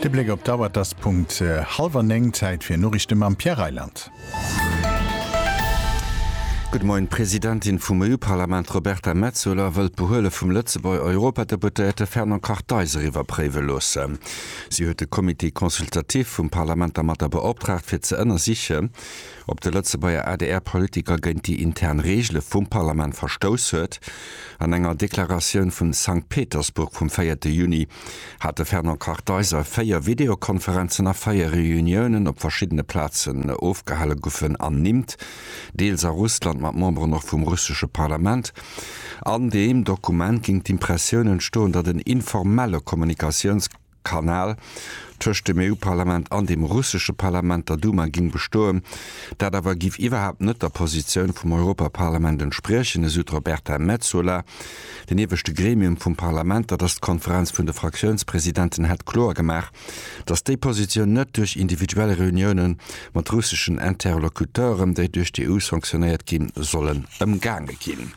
De Bléck op d'Auer, et ass Punkt hallwer néng. Zäit fir Noriichte mam Pierre Reyland. Gudde Moien. D'Presidentin vum EU-Parlament Roberta Metsola wëll d'Behuele vum Lëtzebuerger Europadeputéierte Fernand Kartheiser iwwerpréiwe loosse. Si huet de Comité consultatif vum Parlament dermatter beoptraagt, fir ze ënnersichen, ob de Lëtzebuerger ADR-Politiker géint déi intern Reegele vum Parlament verstouss huet. An enger Deklaratioun vu Sankt Petersburg vum véierte Juni hat de Fernand Kartheiser véier Videokonferenzen a véier Reuniounen op verschiddene Plazen ofgehale gufen ernimmt, deels a Russland mat Memberen och vum russesche Parlament. An deem Dokument géing d'Impressioun entstoen, datt en informelle Kommunikatiouns. Kanal tëscht dem EU-Parlament an dem russesche Parlament, der Duma, géing bestoen. Dat awer géif iwwerhaapt net der Positioun vum Europaparlament entspriechen, esou d'Roberta Metsola. Den ieweschte Gremium vum Parlament, dat ass d'Konferenz vun de Fraktiounspresidenten, hätt kloer gemaach, datt déi Positioun net duerch individuell Reunioune mat russeschen Interlocuteuren, déi duerch d'EU sanktionéiert ginn, sollen ëmgaange ginn.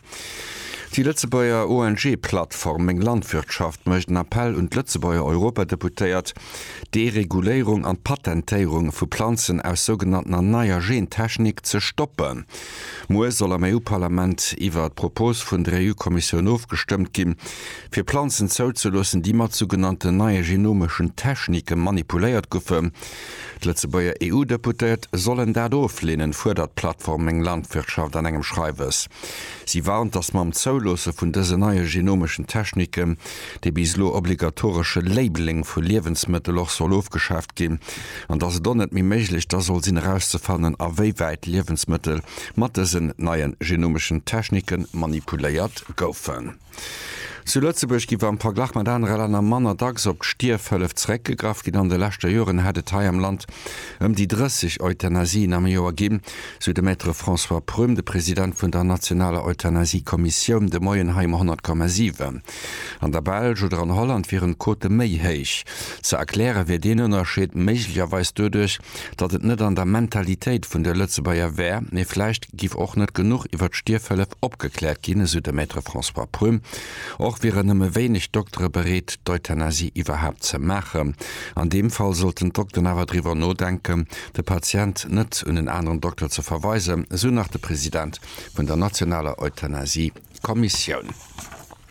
Déi Lëtzebuerger ONG-Plattform Meng Landwirtschaft mécht en Appell un d'Lëtzebuerger Europadeputéiert, d'Dereguléierung an d'Patentéierung vu Planzen aus sougenanntener neier Gentechnik ze stoppen. Muer soll am EU-Parlament iwwer d'Propos vun der EU-Kommissioun ofgestëmmt ginn, fir Planzen zouzeloossen, déi mat sougenannten neie genomeschen Technike manipuléiert goufen. D'Lëtzebuerger EU-Deputéiert sollen dat ofleenen, fuerdert d'Plattform Meng Landwirtschaft an engem Schreiwes. Si warnt, datt mam Zouloosse vun dësen neie genomeschen Techniken, dee bis elo obligatoresche Labeling vu Liewensmëttel och soll ofgeschaaft ginn, an datt et och net méi méiglech da soll sinn erauszefannen, awéiwäit Liewensmëttel mat dësen neien genomeschen Technike manipuléiert goufen. Zu Lëtzebuerg giff am Verglach mat anere Länner manner dacks op d'Stierfhëllef zeréckgegraff ginn. An de leschter Joren hätt et hei am Land ëm déi 30 Euthanasien am Joer ginn, sou de Maître François Prüm, de President vun der nationaler Euthanasie-Kommissioun de Moien hei um 100,7. An der Belsch oder an Holland wieren d'Quote méi héich. Ze erkläre wier deen Ënnerscheed méiglecherweis doduerch, datt et net an der Mentalitéit vun de Lëtzebuerger wär, mee vläicht, giff och net genuch iwwer d'Stierfhëllef opgekläert ginn, esou de Maître François Prüm. Och wieren nëmme wéineg Doktere bereet, d'Euthanasie iwwerhaapt ze maachen. An deem Fall sollten d'Dokteren awer driwwer nodenken, de Patient net un en aneren Dokter ze verweisen, esou nach de President vun der nationaler Euthanasie-Kommissioun.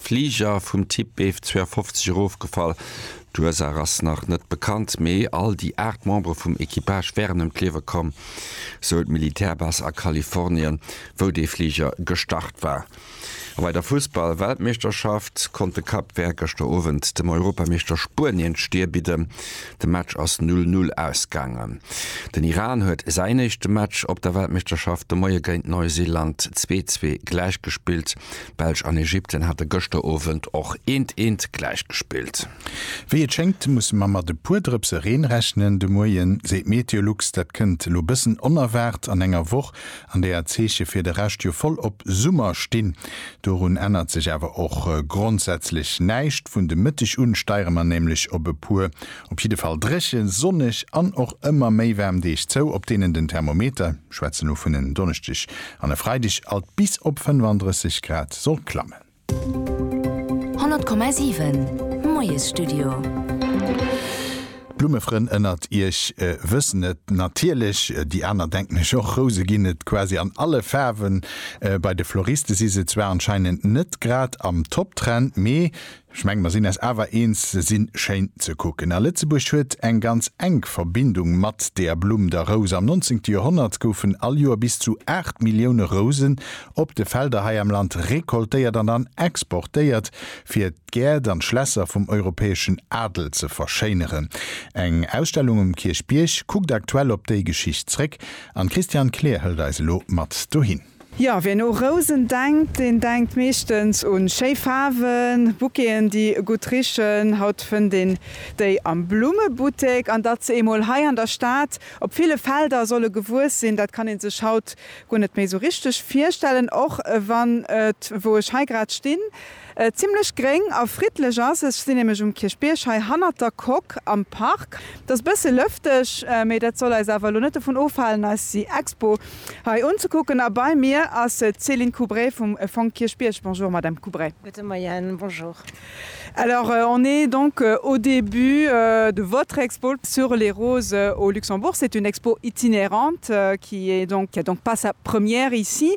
Fliger vum Typ Bf 52 erofgefall. D'Ursaach ass nach net bekannt, mee all déi 8 Membere vum Equipage wären ëm d'Liewe komm, sou d'Militärbase a Kalifornien, wou dee Fliger gestart war. A bei der Fussball-Weltmeeschterschaft konnt de Cap Vert gëschter Owend dem Europameeschter Spuenien d'Stier bidden. De Match ass 0, 0 ausgaangen. Den Iran huet säin éischte Match op der Weltmeeschterschaft de Moie géint Neuseeland 2, 2 gläichgespillt. Belsch an Ägypten hate gëschter Owend och eent eent gläich gespillt. Wéi et schéngt musse mer mat e puer Drëpse Reen rechnen de Moien, seet Meteolux. Dat kënnt elo bëssen onerwaart an enger Woch, an där d'Zeeche fir de Rescht jo voll op Summer stinn. Dorun ännert sech awer och grondsätzlech näischt. Vun de Mëtteg un steiere mer nämlech op e puer op jidde Fall dréche, sonneg an och ëmmer méi waarm Deeg zou, op deenen den Thermometer, ech schwätzen elo vun en Donneschdeg An e Freideg alt bis op 35 Grad soll klammen. 100,7 Moiesstudio. D'Blummefrënn ënnert iech wëssen et natierlech, déi aner denken ech och. Rouse ginn et quasi an alle Faarwen. Bei de Floriste si se zwar anscheinend net grad am Top-Trend, mee Ech mengen mer sinn eis awer eens, se sinn schéin ze kucken a Lëtzebuerg huet eng ganz enk Verbindung mat deer Blumm, der Rous. Am nonzéngte Joerhonnert goufen all Joer bis zu 8 Millioune Rousen op de Felder hei am Land recoltéiert an dann exportéiert, fir d'Gäert an d'Schlässer vum europäeschen Adel ze verschéineren. Eng Ausstellung um Kierchbierg kuckt aktuell op déi Geschicht zréck an d'Christiane Kleer hëlt eis elo mat dohin. Jo, wien u Rousen denkt, deen denkt meeschtens un schéi Faarwen, Bouqueten, déi gutt richen. Haut fënnt een déi am Blummebuttek. An datt se emol hei an der Stad op ville Felder solle gewuess sinn, dat kann ee sech haut guer net méi sou richteg virstellen, och wann et, wou ech hei grad stinn, Zimlech gréng a friddlech ass. Ech sinn nämlech um Kierchbierg hei hannert der Coque am Park. Et ass e bësse lëfteg, mee dat soll eis awer elo net dovun ofhalen, eis déi Expo hei unzekucken. A bei mir ass d'Céline Coubray vum Fong Kierchbierg. Bonjour Madame Coubray. Gute Moien, bonjour. Alors, on est donc au début de votre expo sur les roses au Luxembourg. C'est une expo itinérante qui est donc, qui a donc pas sa première ici.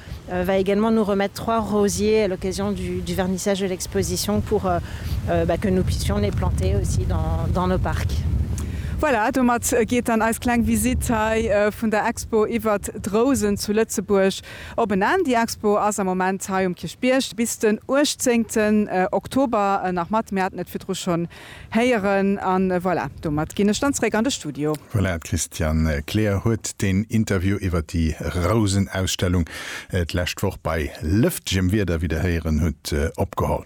Elle va également nous remettre trois rosiers à l'occasion du vernissage de l'exposition pour que nous puissions les planter aussi dans nos parcs. Voilà, domat geet dann eis kleng Visitt hei vun der Expo iwwert d'Rousen zu Lëtzebuerg op en Enn. Déi Expo ass am Moment hei um Kierchbierg bis den 18 Oktober nach mat. Mir haten et virdru schonn Héieren an voilà, domat ginn ech dann zréck an de Studio. Voilà, d'Christiane Kleer huet den Interview iwwert déi Rousenausstellung d'lescht Woch bei lëftgem Wieder, wéi der héieren hutt, opgeholl.